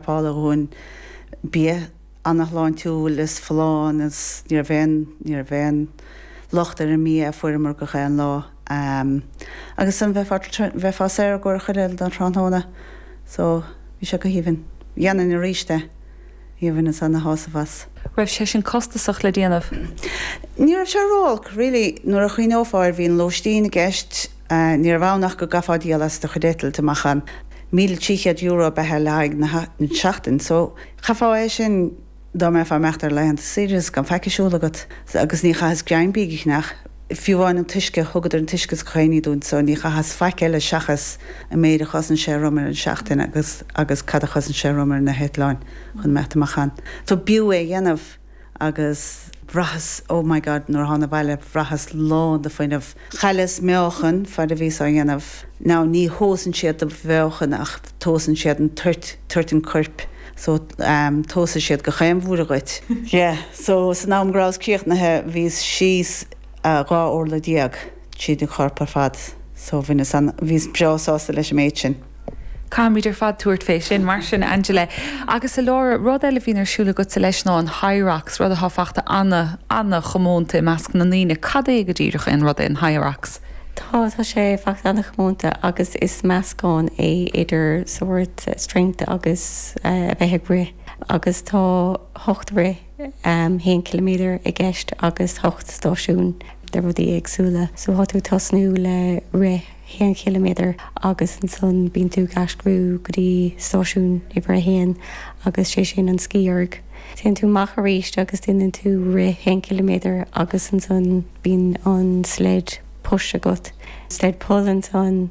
Paula Dhúin, Bia ana shláintiúil is folláin is ní raibh aon, ní raibh aon locht ar an mbia a fuaireamar gach aon lá. Agus an bheifeá, bheifeá saor go chuile don thráthnóna. So, bhí sé go haoibhinn. Dhéanfainn arís é. Bhí rinneas ana shásamh as. raibh sé sin costasach le déanamh? Ní raibh sé ró-olc really nuair a chuimhneofá air bhí an lóistín i gceist, Ní raibh ann ach go gcaithfeá díol as do chuid eitiltí amach an €1,300 ab ea é le haghaidh na seachtain so chaithfeá é sin dá mbeifeá imeacht ar laethanta saoire gan faic a siúl agat agus ní chaitheas greim bídh a cheannach, fiú amháin an t-uisce, thugadar an t-uisce is gach aon ní dúinn so ní chaitheas faic eile seachas an méid a chosain sé romham ar an seachtain agus agus cad a chosain sé romham ar na heitleáin chun imeacht amach ann. So b'fhiú é a dhéanamh. agus bhraitheas, oh my God, nuair a thána abhaile bhraitheas lán de fuinneamh. Chailleas meáchan, fad a bhíos á dhéanamh. Now ní thomhasann siad do mheáchan ach tomhasann siad an toirt, toirt an coirp, so ehm tomhasann siad gach aon bhlúire dhuit. Yeah, so san am go rabhas críochnaithe bhíos síos dhá orlaigh déag. tríd an chorp ar fad. So bhaineas an, bhíos breá sásta leis an méid sin. Caithfimid ar fad tabhairt fé sin. Mar sin, Angela, agus a Laura, rud eile a bhíonn ar siúl agatsa leis ná an Hyrox, rud atá fachta ana, ana chomónta i measc na ndaoine. Cad é go díreach é an rud é an Hyrox? Tá, tá sé fachta ana chomónta agus is meascán é idir sórt strength agus a bheith ag rith agus tá hocht rith, haon chiliméadar i gceist agus hocht stáisiún de rudaí éagsúla. So tá tú tosnú le rith haon chiliméadar agus ansan bíonn tú ag aistriú go dtí stáisiún uimhir a haon agus sé sin an Ski Erg. Téann tú amach aríst agus déanann tú rith haon chiliméadar agus ansan bíonn an sled push agat, sled pull ansan.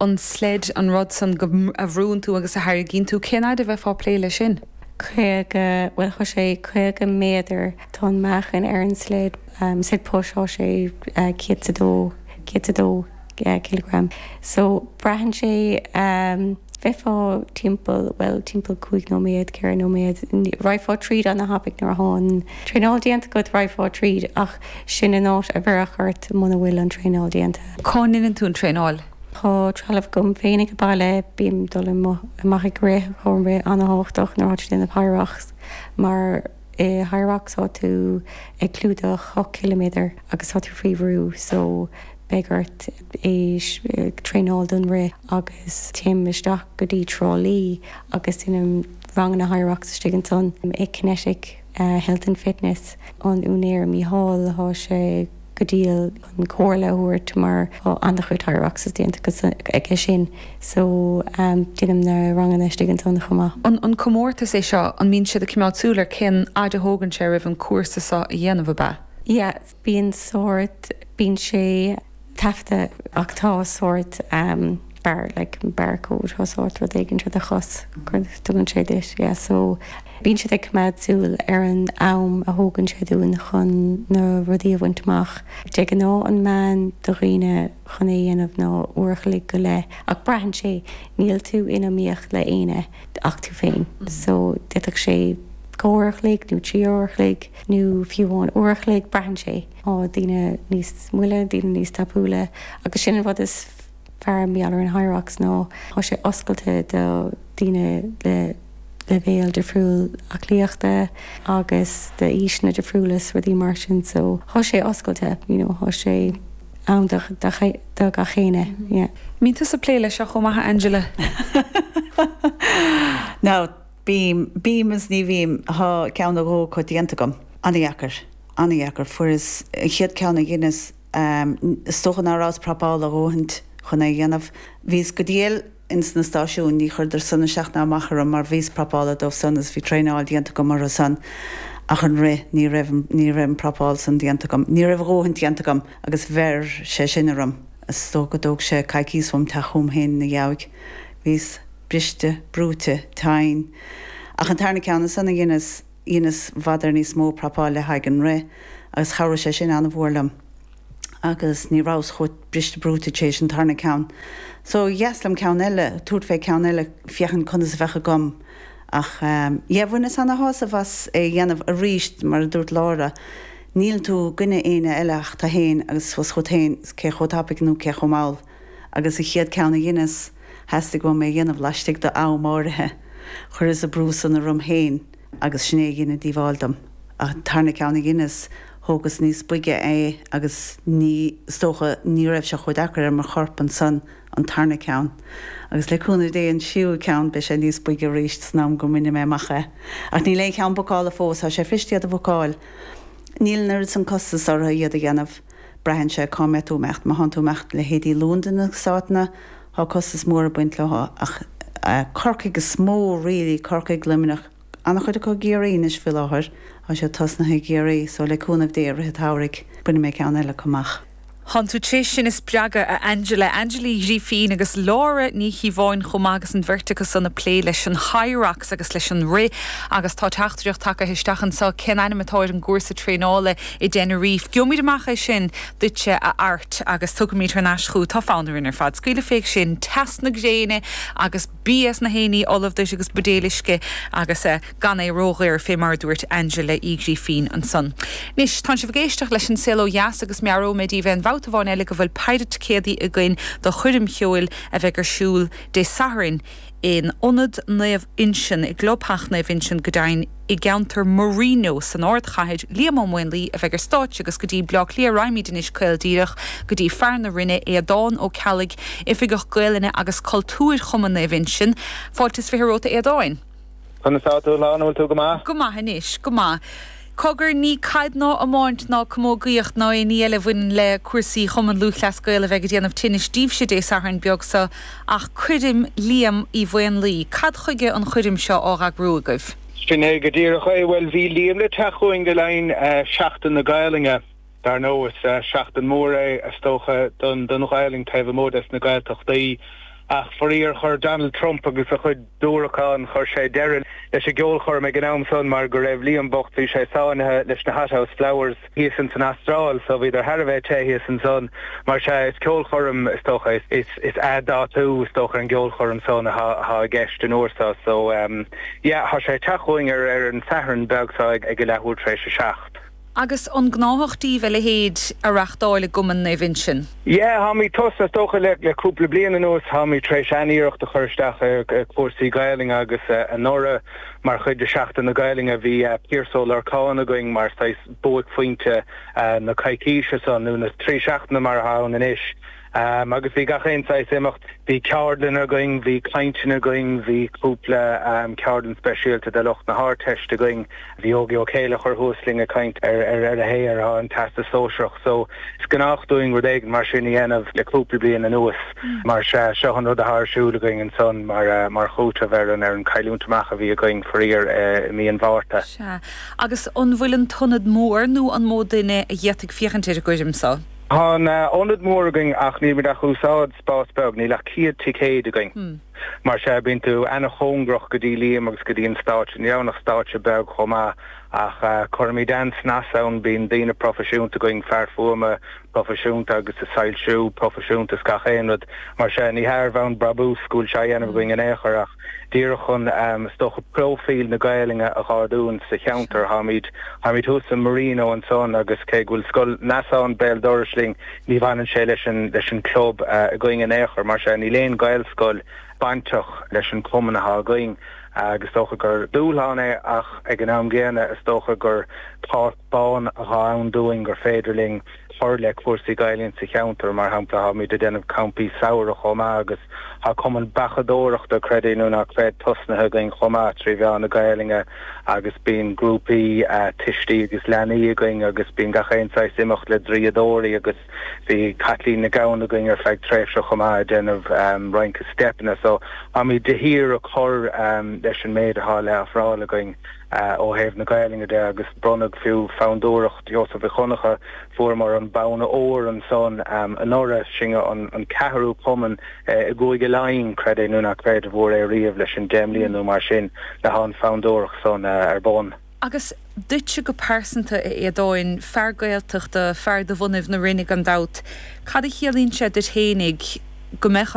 an sled an rud san go, a bhrúnn tú agus a tharraingíonn tú, cén fhaid a bheifeá á plé leis sin? caoga, bhuel tá sé caoga méadar, tá an meáchan ar an sled, sled push, tá sé céad 's a dó, céad 's a dó cileagram so braitheann sé, bheifeá timpeall, bhuel timpeall cúig nóiméad, ceithre nóiméad, raghfá tríd ana thapaidh nuair a thá an traenáil déanta agat, raghfá tríd ach, Sin an áit a bheireadh ort muna bhfuil an traenáil déanta. Cá ndéanann tú an traenáil? Tá trealamh agam féinig ag baile. Bím dul amach ag rith tá an rith an-tábhachtach nuair atá tú déanamh Hyrox mar i Hyrox tá tú ag clúdach ocht ciliméadar agus tá tú faoi bhrú so beidh ort é traenáil don rith agus téim isteach go dtí Trá Lí agus déanaim ranganna Hyrox istigh ansan i Kinetic. Halton Fitness, an úinéir Mícheál, tá sé go diail chun comhairle a thabhairt mar tá ana-chuid Hyrox déanta aige sin so déanaim na ranganna istigh ansan chomh maith. An comórtas é seo, an mbíonn siad ag coimeád súil ar cén fhaid a thógann sé roimh an cúrsa so a dhéanamh, ab ea? Yeah, bíonn sórt, bíonn sé taifeadta ach tá sórt bar, like bar code, tá sórt rud éigin ar do chos, tugann sé duit, yeah, so bíonn siad ag coimeád súil ar an am a thógann sé dúinn chun na rudaí a bhaint amach. De ghnáth an meán do dhaoine chun é a dhéanamh ná uair a chloig go leith ach braitheann sé, níl tú in iomaíocht le éinne ach tú féin, so d'fhéadfadh sé dhá uair a chloig nó trí uair a chloig. nó fiú amháin uair a chloig, braitheann sé, tá daoine níos moille, daoine níos tapúla agus sin an rud is fearr mar gheall ar an Hyrox ná tá sé oscailte do daoine le leibhéal difriúil aclaíochta agus d'aoiseanna difriúla 's rudaí mar sin so tá sé oscailte, you know, tá sé ann do, do gach éinne, yeah. mbíonn tusa plé leis seo chomh maith a Angela? Now. Bím, bím is ní bhím. Thá ceann nó dhó acu déanta agam. An-dheacair, an-dheacair. Fuaireas an chéad ceann a dheineas, is dócha ná rabhas prapálta a dhóthaint chun é a dhéanamh. Bhíos go diail ins na stáisiúin, ní chuireadar san isteach ná amach orm mar bhíos prapálta dóibh san is bhí traenáil déanta agam orthu san ach an rith ní raibh, ní raibh an prapáil san déanta agam, ní raibh a dhóthaint déanta agam agus bheir sé sin orm. Is dócha go dtóg sé coicíos uaim teacht chugam féin ina dheabhaidh. Bhíos. briste, brúite, tinn. Ach an tarna ceann ansan a dheineas, dheineas i bhfad níos mó prapáil le haghaidh an rith agus chabhraigh sé sin an-mhór liom. Agus ní rabhas chomh briste brúite tar éis an tarna ceann. So dheas liom ceann eile, tabhairt fé ceann eile féachaint conas a bheadh agam. Ach ehm, yeah bhaineas ana-shásamh as é dhéanamh aríst, mar a dúirt Laura, níl tú i gcoinne éinne eile ach tu fhéin agus 's chugat fhéin, 's cé chomh tapaidh nó cé chomh mall. agus an chéad ceann a dheineas, theastaigh uaim é a dhéanamh laistigh do am áirithe. Chuireas an brú san orm féin agus sin é a dhein an díobháil dom. An tarna ceann a dheineas, thógas níos boige é agus ní, is dócha, ní raibh sé chomh deacair ar mo chorp ansan an tarna ceann. Agus le cúnamh Dé an tríú ceann beidh sé níos boige arís san am go mbaine mé amach é. Ach níl aon cheann bookálta fós, tá sé cliste iad a bhookáil. Níl, an oiread san costas orthu iad a dhéanamh. Braitheann sé cá mbeidh tú ag imeacht. Má théann tú ag imeacht leithéidí Londain, na háiteanna, tá costas mór ag baint leo ach Corcaigh is mó really, Corcaigh, Luimneach, an-chuid acu i gCiarraí anois faoi láthair, tá siad tosnaithe i gCiarraí so le cúnamh Dé i rith an tsamhraidh bainfidh mé ceann eile acu amach. Tánn tú tar éis sinn a spreagadh, a Angela, Angela Uí Ghrifín agus Laura Ní Chíobháin chomh maith agus an bheirt acu san ag plé leis an Hyrox agus leis an rith agus tá teachtaireacht tagaithe isteach anseo, cén ainm atá ar an gcúrsa traenála? i dTenerife. Gheobhaimid amach é sin duitse a Art agus tabharfaimid thar n-ais chugat é tá fonn orainn ar fad scaoileadh fé ansin teas na gréine agus bia is na héinní ullamh duit agus buidéil uisce agus eh gan é ródhaor fé mar a dúirt Angela Uí Ghrifín ansan. Anois tánn sibh ag éisteacht leis an Saol Ó Dheas agus meabhróidh mé daoibh aon bhabhta amháin eile go bhfuil péire ticéadaí againn do chuirm cheoil a bheidh ar siúl Dé Sathairn i in Ionad Naomh Uinseann i gclubtheach Naomh Uinseann go deimhin i gceantar Marino san ardchathair, Liam Ó Maonlaí a bheidh ar stáitse agus go dtí Bleá Cliath raghaimid anois caol díreach go dtí fear na Rinne, Aodán Ó Ceallaigh, Oifigeach Gaolainne agus Cultúir Chumann Naomh Uinseann. Fáilte is fiche romhat a Aodáin. Conas atá tú a Helen, an bhfuil tú go maith? Go maith anois, go maith. Cogar, ní caid ná iomáint ná camógaíocht ná aon ní eile a bhaineann le cúrsaí Chumann Lúthchleas Gael a bheidh ag déanamh tinnis díbhse Dé Sathairn beag seo ach cuirm Liam Uí Mhaonlaí. Cad chuige an chuirm seo á eagrú agaibh? Sin é go díreach é. Bhuel, bhí Liam le teacht chugainn le linn Sheachtain na Gaelainne. Dar ndóigh is seachtain mór é is dócha don Ghaelainn taobh amuigh des na Gaeltachtaí ach faraor chuir Donald Trump agus a chuid diúracán chuir sé deireadh leis an gceolchoirm ag an am san mar go raibh Liam bocht bhí sé sáinnithe leis na Hothouse Flowers thíos ins an Astráil so bhíodar thar a bheith te thíos ansan mar sea is ceolchoirm is dócha is athdhátú is dócha ar an gceolchoirm san athá i gceist an uair so so yeah thá sé ag teacht chugainn ar an Satharn beag so ag a leathuair tar éis a seacht. Agus an gnáthach díbh a leithéid a reachtáil i gCumann Naomh Uinseann? Yeah, táimid tar éis, is dócha le cúpla bliain anuas táimid tar éis an-iarracht a chur isteach ar chúrsaí Gaolainne agus anuraidh mar chuid de Seachtain na Gaolainne bhí Piaras Ó Lorcáin againn mar saghas buaicphointe na coicíse san nó na trí seachtaine mar atá ann anois. Agus bhí gach aon saghas imeacht, bhí ceardlann againn, bhí cainteanna againn, bhí cúpla ceardlann speisialta do lucht na hArdteiste againn, bhí Ógie Ó Céilleachair thuas linn ag caint ar a shaothar, don Teastas Sóisearach. So, is gnách dúinn rud éigin mar sin a dhéanamh le cúpla bliain anuas, mar sea, seo an rud atá ar siúl againn ansan mar chúiteamh ar an cailliúint amach a bhí againn faraor i mí an Mhárta. Sea. Agus an bhfuil an t-ionad mór nó an mó duine a d'fhéadfadh féachaint ar an gcuirm so? Tá ionad mór againn ach nílimid ach ag úsáid spás beag, níl ach céad ticéad againn. Mar sea, bíonn tú ana-chóngarach go dtí Liam agus go dtí an stáitse. Ní raibh ann ach stáitse beag chomh maith ach cuirimid an-snas ann, bíonn daoine proifisiúnta againn, fear fuaime proifisiúnta agus is soilsiú proifisiúnta is gach aon rud. Mar sea, ní ar bhonn brabúis go bhfuil sé á dhéanamh againn in aon chor ach. díreach chun, is dócha, próifíl na Gaelainne a dh'ardú sa cheantar. Táimid, táimid thuas i Marino ansan agus cé go bhfuil scoil Neasáin béal dorais linn ní bhaineann sé leis an, leis an gclub againn in aon chor. Mar sea, níl aon Ghaelscoil bainteach leis an chumann atá againn agus is dócha gur dúshlán é ach ag an am gcéanna is dócha gur, tá, bonn atá ann dúinn gur féidir linn cur le cúrsaí Gaelainne sa cheantar. Mar shampla, táimid ag déanamh campaí samhraidh chomh maith agus tá cumann beachadóireachta, creid é nó ná creid, tosnaithe againn chomh maith trí mheán na Gaelainne agus bíonn grúpaí tuistí agus leanaí againn agus bíonn gach aon saghas imeacht le draíodóirí agus bhí Caitlín Nic Gabhann againn ar feadh tréimhse chomh maith ag déanamh rince steipeanna. So, táimid de shíor ag cur leis an méid athá le ofráil againn. Ó thaobh na Gaolainne de, agus bronnadh fiú Fondúireacht Sheosaimh Mhic Dhonncha, fuaireamar an bonn óir ansan anuraidh. Sinn an ceathrú cumann i gCúige Laighin, creid é nó ná creid, a fuair é riamh leis an deich mbliana nó mar sin ó thá an fhondúireacht san ar bun. Agus duitse go pearsanta, a Aodháin, fear Gaeltachta, fear de bhunadh na Rinne gan dabht, cad a chiallaíonn sé duit fhéinig go mbeadh